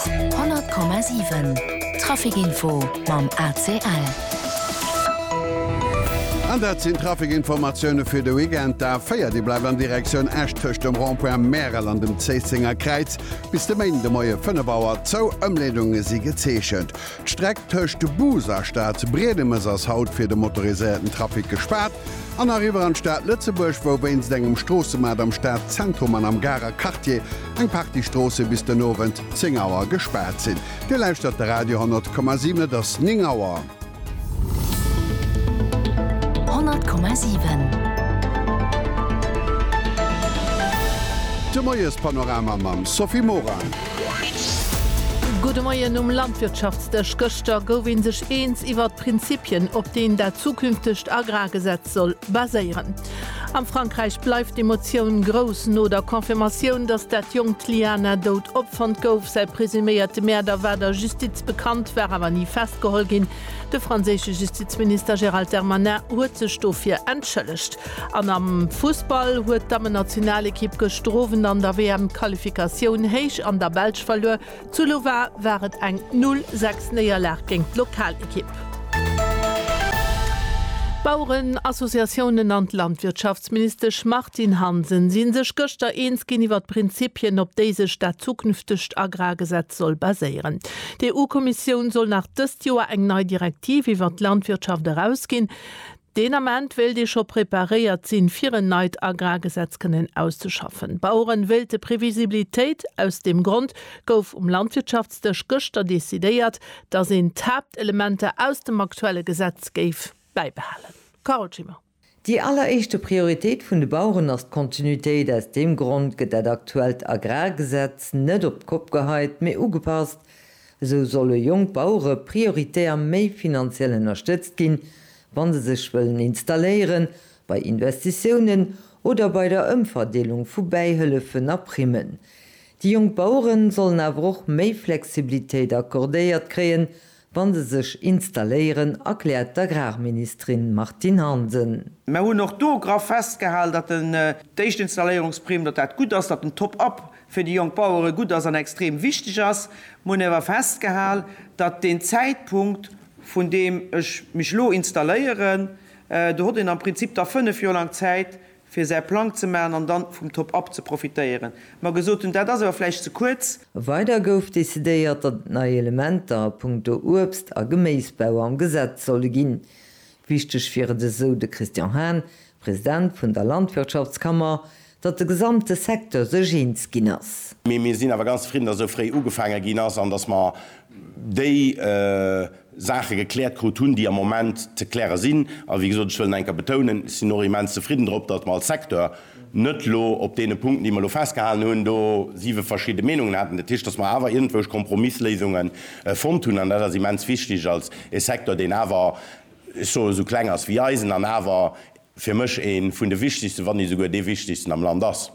100,7 Trafic Info mam ACL. An dat sinn d'Trafic Informatioune fir de Weekend. D'A 4, déi bleift an Direktioun Esch tëscht dem Rond-point Märel an dem Zéissenger Kräiz bis de Méinden de Moie 5 Auer zou. Ëmleedunge si gezeechent. D'Streck tëscht Bus a Stad Briedemes ass haut fir de motoriséierten Trafic gespaart an eriwwer an d'Stad Lëtzebuerg, wou wéinst engem Stroossemat am Stadzentrum an am Garer Quartier eng Partie Stroosse bis den Owend 10 Auer gespaart sinn. Dir lauschtert de Radio 10,7, et ass 9 Auer. 10,7. De Moiespanorama mam Sophie Morang. Gudde Moien um Landwirtschaftsdësch. Gëschter gouf ee sech eens iwwert d'Prinzipien, op deen dat zukünftegt Agrargesetz soll baséieren. Am Frankräich bleift d'Emotioun grouss no der Confirmatioun, datt dat jonkt Liana dout opfonnt gouf. Säi presuméierte Mäerder war der Justiz bekannt, war awer ni festgeholl ginn. De franséische Justizminister Gérald Darmanin huet sech dofir entschëllegt. An am Fussball huet d'Dammennationalekipp gëschter Owend an der WM-Qualifikatioun héich an der Belsch verluer. Zu Louvain war et eng 0, 6 Néierlag géint d'Lokalekipp. D'Baueren Associatiounen an d'Landwirtschaftsministesch Martine Hansen si sech gëschter eens ginn iwwer d'Prinzippien op déi sech dat zukünftegt Agrargesetz soll baséieren. D'EU-Kommissioun soll nach dëst Joer eng nei Direktiv iwwer d'Landwirtschaft erausginn. Deen Ament wéilt ee scho preparéiert sinn, fir en neit Agrargesetz kënnen auszeschaffen. D'Baueren wéilte Previsibilitéit. Aus deem Grond gouf um Landwirtschaftsdësch gëschter decidéiert, dass een d'Haaptelementer aus dem aktuelle Gesetz géif bäibehalen. Carole Schimmer. Déi alleréischte Prioritéit vun de Baueren ass d'Kontinuitéit. Aus deem Grond gëtt dat aktuellt Agrargesetz net op d'Kopp geheit, mee ugepasst, Esou solle jonk Bauere prioritär méi finanziell ënnerstëtzt ginn, wa se sech wëllen installéieren, bei Investitiounen oder bei der Ëmverdeelung vu Bäihëllefen a Primmen. Déi jonk Bauere sollen awer och méi Flexibilitéit accordéiert kréien, wa se sech installéieren, erkläert d'Agrarministerin Martine Hansen. Mer hunn och do graff festgehalen, datt déi éischt Installéierungsprimm, datt dat gutt ass, datt den Top-up fir déi jonk Bauere gutt ass an extrem wichteg ass. Mir hunn awer festgehal, datt deen Zäitpunkt, vun deem ech mech elo installéieren, do hott een am Prinzip da fënnef Joer laang Zäit, fir säi Plang ze maachen an dann vum Top-up ze profitéieren, mer gesot hunn, dat ass awer vläicht ze kuerz. Weider gouf decidéiert, datt et nei Elementer a punkto Uebst a Geméisbau am Gesetz solle ginn. Wichteg wier et, esou de Christian Hahn, President vun der Landwirtschaftskammer, datt de gesamte Secteur sech eens ginn ass. Mee mir sinn awer ganz zefridden, datt esou fréi ugefaange ginn ass an datt mer déi Saache gekläert krut hunn, déi am Moment ze kläre sinn. A wéi gesot, ech wëll nach eng Kéier betounen, ech sinn och immens zefridden drop, datt mer als Secteur, net elo op deene Punkten, déi mer elo festgehalen hunn, do siwe verschidde Meenungen haten, dat heescht, datt mer awer iergendwousch Kompromissléisunge fonnt hunn. An dat ass immens wichtig als e Secteur, deen awer, ech soen, esou kleng ass wéi eisen an awer fir mech ee vun de wichtigsten, wann net esouguer dee wichtigsten am Land ass.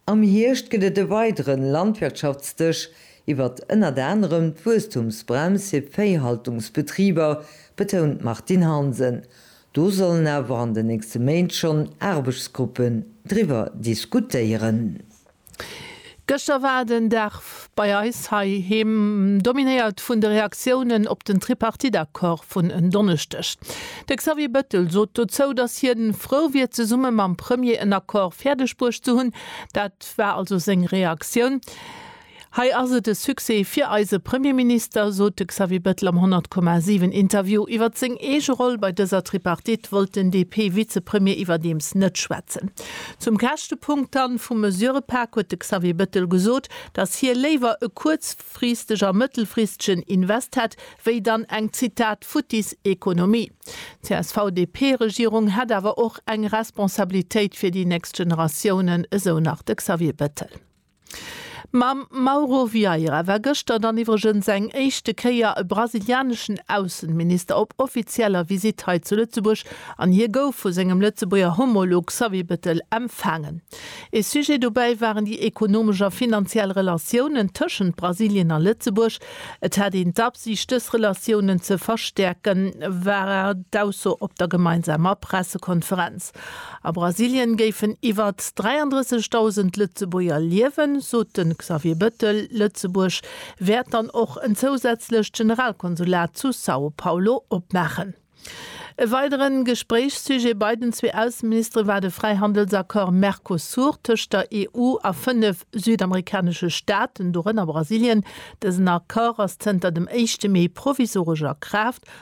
Am Hierscht gëtt et e weidere Landwirtschaftsdësch iwwert ënnert anerem d'Wuesstumsbrems fir Véihaltungsbetriber, betount d'Martine Hansen. Do sollen awer an den nächste Méint schonn Aarbechtsgruppen driwwer diskutéieren. Gëschter war den Dag bei eis heiheem dominéiert vun de Reaktiounen op den Tripartite-Accord vun en Donneschdeg. De Xavier Bettel sot dozou, datt hien frou wier zesumme mam Premier en Accord fäerdeg bruecht ze hunn. Dat war also seng Reaktioun. Hei ass et e Succès fir eise Premierminister, sot de Xavier Bettel am 100, 7 Interview. Iwwer seng eege Roll bei dëser Tripartite wollt den DP-Vizepremier iwwerdeems net schwätzen. Zum käschte Punkt dann vum Mesurepak huet de Xavier Bettel gesot, datt hie léiwer e kuerzfristeg a mëttelfristegen Invest hätt, wéi dann eng, Zitat, futtis Ekonomie. D'CSV-DP-Regierung hätt awer och eng Responsabilitéit fir déi nächst Generatiounen, esou nach de Xavier Bettel. Mam Mauro Vieira war gëschter dann iwwregens eng éischte Kéier e brasilianeschen Aussenminister op offizieller Visitt hei zu Lëtzebuerg an hie gouf vu sengem Lëtzebuerger Homolog Xavier Bettel empfaangen. Ee Sujet dobäi waren déi ekonomesch a finanziell Relatiounen tëschent Brasilien a Lëtzebuerg. Et hätt een d'Absiicht dës Relatiounen ze verstäerken, war d'Ausso op der gemeinsamer Pressekonferenz. A Brasilien géifen iwwert 33.000 Lëtzebuerger liewen, sot de Xavier Bëttel. Lëtzebuerg wäert dann och en zousätzlecht Generalkonsulat zu São Paulo opmaachen. E weidere Gespréichssujet bei den zwee Ausseministere war de Fräihandelsaccord Mercosur tëscht der EU a fënnef südamerikanesche Staaten, dorënner Brasilien. Dësen Accord ass zënter dem éischte Mee provisoresch a Kraaft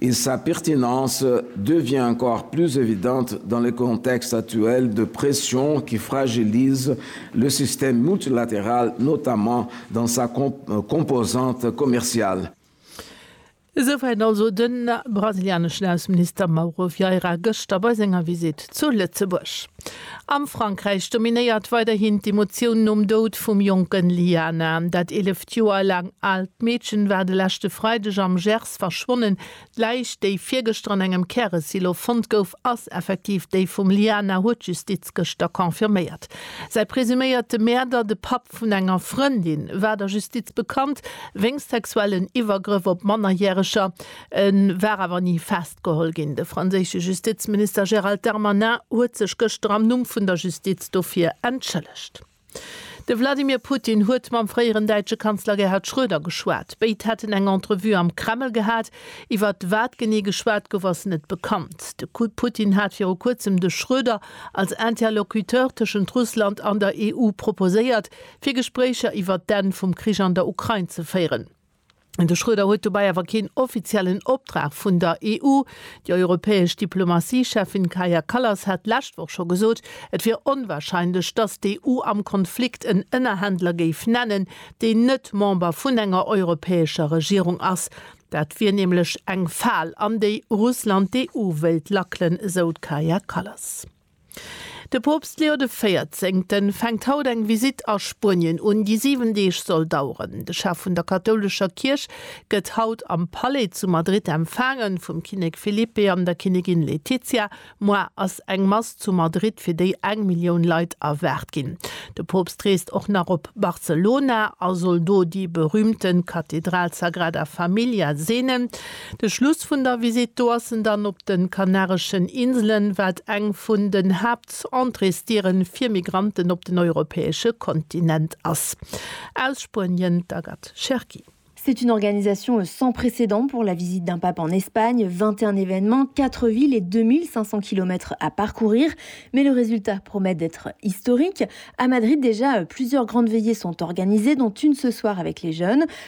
et sa pertinence devient encore plus évidente dans le contexte actuel de pression qui fragilise le système multilatéral, notamment dans sa composante commerciale. Esouwäit also de brasilianeschen Ausseminister Mauro Vieira gëschter bei senger Visitt zu Lëtzebuerg. Am Frankräich dominéiert weiderhin d'Emotioun nom Doud vum jonken Liana. Dat 11 Joer laang aalt Meedchen war de leschte Freideg am Gers Nichts verschwonnen. D'Läich, déi virgëschter an engem Käresilo fonnt gouf, ass effektiv déi vum Liana, huet d'Justiz gëschter confirméiert. Säi presuméierte Mäerder, de Papp vun enger Frëndin, war der Justiz bekannt wéinst sexuellen Iwwergrëff op Mannerjäreger. E war awer ni festgeholl ginn. De franséische Justizminister Gérald Darmanin huet sech gëschter am Numm vun der Justiz dofir entschëllegt. De Wladimir Putin huet mam fréieren däitsche Kanzler Gerhard Schröder geschwat. Béid hätten eng Entrevue am Kreml gehat. Iwwer wat genee geschwat gouf, ass net bekannt. De Putin hat viru kuerzem de Schröder als Interlocuteur tëschent Russland an der EU proposéiert, fir Gespréicher iwwer d'Enn vum Krich an der Ukrain ze féieren. De Schröder huet dobäi awer keen offiziellen Optrag vun der EU. Déi europäesch Diplomatie-Cheffin Kaja Kallas hat d'lescht Woch scho gesot, et wier onwarscheinlech, datt d'EU am Konflikt en Ënnerhändler géif nennen, deen net Member vun enger europäescher Regierung ass. Dat wier nämlech eng Fal, an déi Russland d'EU wéilt lackelen, esou d'Kaja Kallas. De Poopst Leo de Véierzéngten fänkt haut eng Visitt a Spuenien un, déi 7 Deeg soll daueren. De Chef vun der kathoulescher Kierch gëtt haut am Palais zu Madrid empfaangen, vum Kinnek Felipe an der Kinnigin Letizia. Moar ass eng Mass zu Madrid, fir déi eng Millioun Leit erwaart ginn. De Poopst reest och nach op Barcelona a soll do déi berüümten Kathedral Sagrada Familia seenen. De Schluss vun der Visitt do ass en dann op den Kanareschen Inselen, wat eng vun den Haaptentréesdieren fir Migranten op den europäesche Kontinent ass. Aus Spuenien d'Agathe Cherki. C'est une organisation sans précédent pour la visite d'un pape en Espagne, 21 événements, 4 villes et 2.500 kilomètres à parcourir, mais le résultat promet d'être historique. À Madrid déjà, plusieurs grandes veillées sont organisées, dont une ce soir avec les jeunes.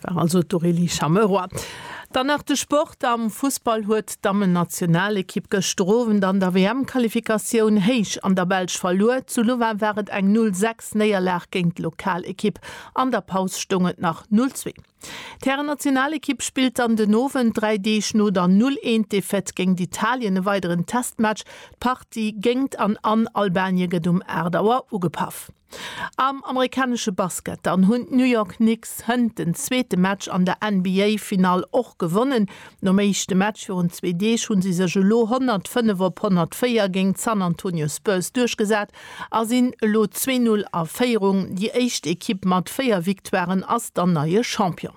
Dat war also d'Aurélie Chamerois. Dann nach de Sport, Am Fussball huet d'Dammennationalekipp gëschter Owend an der WM-Qualifikatioun héich an der Belsch verluer. Zu Louvain war et eng 0, 6 Néierlag géint d'Lokalekipp. An der Paus stoung et nach 0, 2. D'Härennationalekipp spillt dann den Owend, dräi Deeg no der 0, 1 Defaite géint Italien, e weideren Testmatch. D'Partie géingt an an Albanie gëtt um 8 Auer ugepaff. Am amerikanesche Basket dann hunn d'New York Knicks hënt den zweete Match an der NBA-Finall och gewonnen. Nom éischte Match virun zwee Deeg hu si sech elo 105 op 104 géint d'San Antonio Spurs duerchgesat a sinn elo zwee Null a Féierung. Déi éischt Ekipp mat véier Victoiren ass dann neie Champion.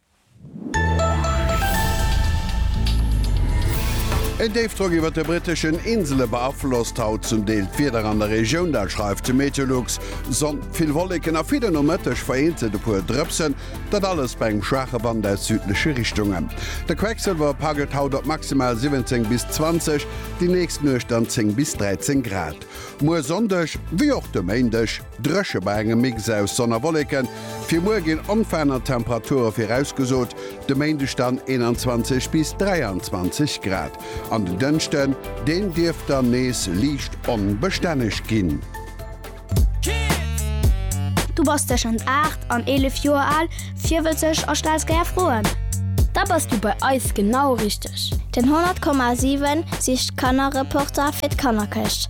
En Déifdrock iwwert de britteschen Insele beaflosst haut zum Deel d'Wieder an der Regioun. Dat schreift de Meteolux. Sonn, vill Wolleken a fir de Nomëtteg vereenzelt e puer Drëpsen. Dat alles bei engem schwaache Wand aus südleche Richtungen. De Quecksëlwer paggelt haut op maximal 17 bis 20, déi nächst Nuecht dann 10 bis 13 Grad. Muer Sonndeg, wéi och de Méindeg, Dréche bei engem Mix aus Sonn a Wolleken, fir muer ginn onveraanert Temperature virausgesot, de Méindeg dann 21 bis 23 Grad an den Dënschden, deen dierft dann nees liicht onbestänneg ginn. Du bass tëschent 8 an 11 Joer al, virwëtzeg a stells gär Froen? Da bass du bei eis genau richteg! Den 100,7 sicht Kannerreporter fir d'Kannerkëscht.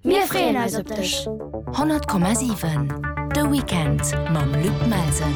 Mir freeën eis op dech! 100,7 De Weekend mam Luc Melsen.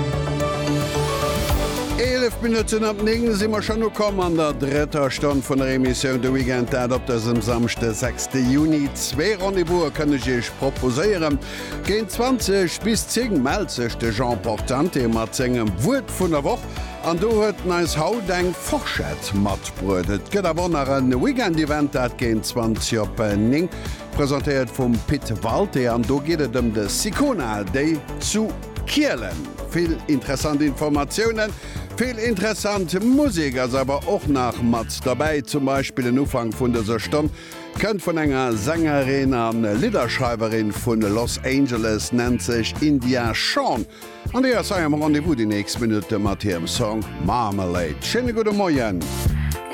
Eelef Minutten op néng si mer schonn ukomm an der drëtter Stonn vun der Emissioun De Weekend, dat op dësem Samschde, sechste Juni. Zwee Rendez-Vouse kënn ech Iech proposéieren. Géint 20 bis 10 mellt sech de Jean Portante mat sengem Wuert vun der Woch. An do huet en eis haut eng Forschett matbruet. Et gëtt awer och nach en Weekend-Event, dat géint 20 op 9, presentéiert vum Pit Walté. An do geet et ëm de Sicona Day zu Kielen. Vill interessant Informatiounen, vill interessant Musek ass awer och nach mat derbäi. Zum Beispill en Ufank vun dëser Stonn kënnt vun enger Sängerin a Lidderschreiwerin vu Los Angeles, nennt sech India Shawn. An déi ass hei am Rendez-vous déi nächst Minutte mat hirem Song Marmalade. Schéine gudde Moien.